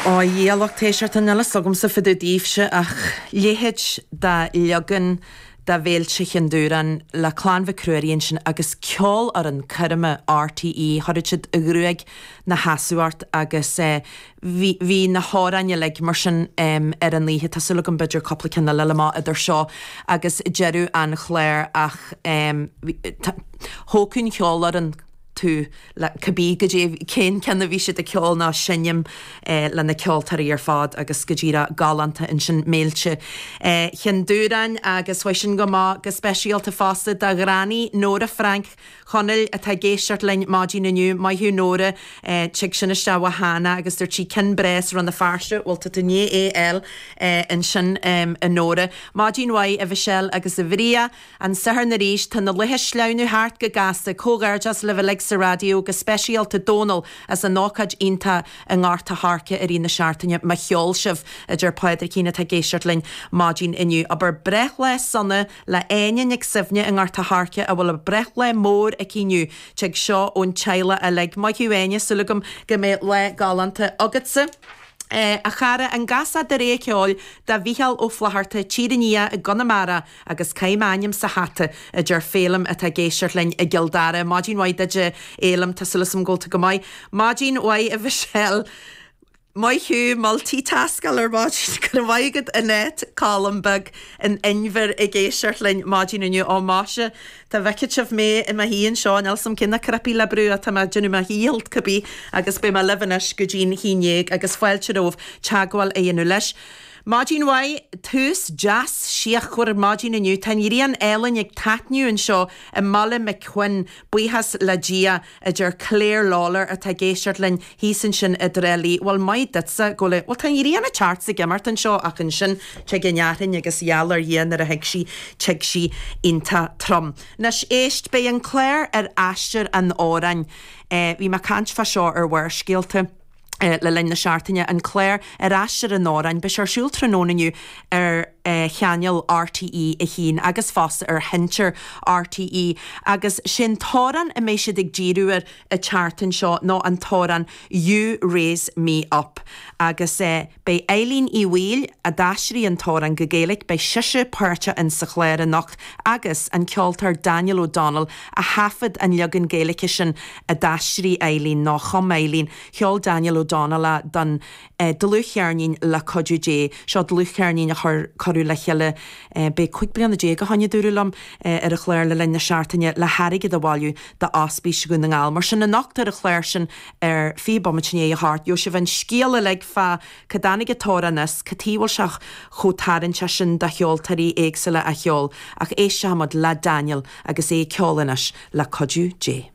Ó a lucht éisteachta níl a fhios agamsa fá dtaobh daoibhse ach léithéid de leagan de Mhéilte Chinn Dúráin le Clann Mhic Ruairí ansin agus ceolfhoireann coirme R.T.E. chuirfeadh siad an ghruaig ina seasamh ort agus bhí, bhí na hamhráin uilig mar sin ar an oíche, tá súil agam b'fhéidir cúpla ceann eile liom idir seo agus deireadh an chláir ach tá, thógann ceolfhoireann. tú le cibé goidé an ceann a bhí siad ag ceol ná seinm le na ceoltóirí ar fad agus goidé go raibh galánta ansin Méilte Chinn Dúráin agus gabhfaidh sin go maith go speisialta fosta do Ghranny Nóra Frainc Chonaill atá ag éisteacht linn maidin inniu maith thú Nóra tig sin isteach ó Hannah agus dúirt sí cinn bhreá as Rann na Feirste a bhfuil tú i do Nana AL ansin a Nóra maidin mhaith a Mhichelle agus a Bhriain An Satharn arís tá na laetha ag sleamhnú thart go gasta. Comhghairdeas libh uilig sa raidió, go speisialta Dónal as an ócáid iontach i nGort a' Choirce i rith na seachtaine. Mo cheol sibh! a deir Pádraicín atá ag éisteacht linn maidin inniu. Abair breithlá sona le Áine Nic Suibhne i nGort a' Choirce a bhfuil a breithlá mór aici inniu. Tig seo ón teaghlach uilig. Maith thú Áine, súil agam go mbeidh lá galánta agatsa. A chara, an gcasfá dreas ceoil do Mhicheál Ó Flatharta, Tír an Fhia i gConamara. Agus caith m'ainm sa hata? a deir Féilim atá ag éisteacht linn i gCill Dara. Maidin mhaith duit, a Fhéilim, tá súil agam go bhfuil tú go maith. Maidin mhaith, a Mhichelle. Maith thú, multi-taskáil ar maidin. Go raibh maith agat Annette, Colm beag an Inbhir ag éisteacht linn maidin inniu. Ó máisea, dá bhfeicfeadh sibh mé i mo shuí anseo níl a fhios agam cé na cnaipí le brú atá mé ag déanamh mo dhíchill cibé agus beidh mé libh anois go dtí a haon déag agus fáilte romhaibh teagmháil a dhéanamh linn. Maidin mhaith, tús deas síochánta maidin inniu. Tá an ghrian álainn ag taitneamh anseo i mBaile Mhic Chuinn, buíochas le Dia, a deir Clare Lawlor atá ag éisteacht linn thíos ansin i dTrá Lí. Bhuel, maith duitse, go le. Bhuel, tá an ghrian ag teacht 's ag imeacht anseo ach ansin tig an fhearthainn agus geall le Dia nuair a thig sí, tig sí iontach trom. Anois, éist, beidh an clár Aistear an amhráin. Bhí mé ag caint fá seo ar Bharrscéalta. le linn na seachtaine, an clár Aistear an Amhráin. Beidh sé ar siúl tráthnóna inniu ar chainéal RTÉ 1 agus fosta ar Sheinnteoir RTÉ agus sé'n t-amhrán a mbeidh siad ag díriú air an tseachtain seo ná an t-amhrán 'You Raise Me Up' agus eh. Beidh Eilín Uí Bhaoill, a d'aistrigh an t-amhrán go Gaeilge, beidh sise páirteach insa chlár anocht agus an ceoltóir Daniel O'Donnell a thaifead an leagan Gaeilge sin a d'aistrigh Eilín, nó a chum Eilín. Cheol Daniel O'Donnell é don dlúthcheirnín Le Cuidiú Dé. Seo dlúthcheirnín a cuireadh le chéile, beidh cúig bliana déag ó shin, a dúradh liom, ar an chlár le linn na seachtaine le hairgead a bhailiú d'Ospís Dhún na nGall. Mar sin anocht ar an chlár sin ar fiche bomaite i ndiaidh a thabhairt daoibh an scéal uilig fá cá dtáinig an t-amhrán agus cad tuige a bhfuil sé chomh tarraingteach sin do cheoltóirí éagsúla a cheol ach éistfimid le Daniel agus é ag ceol anois le cuidiú Dé.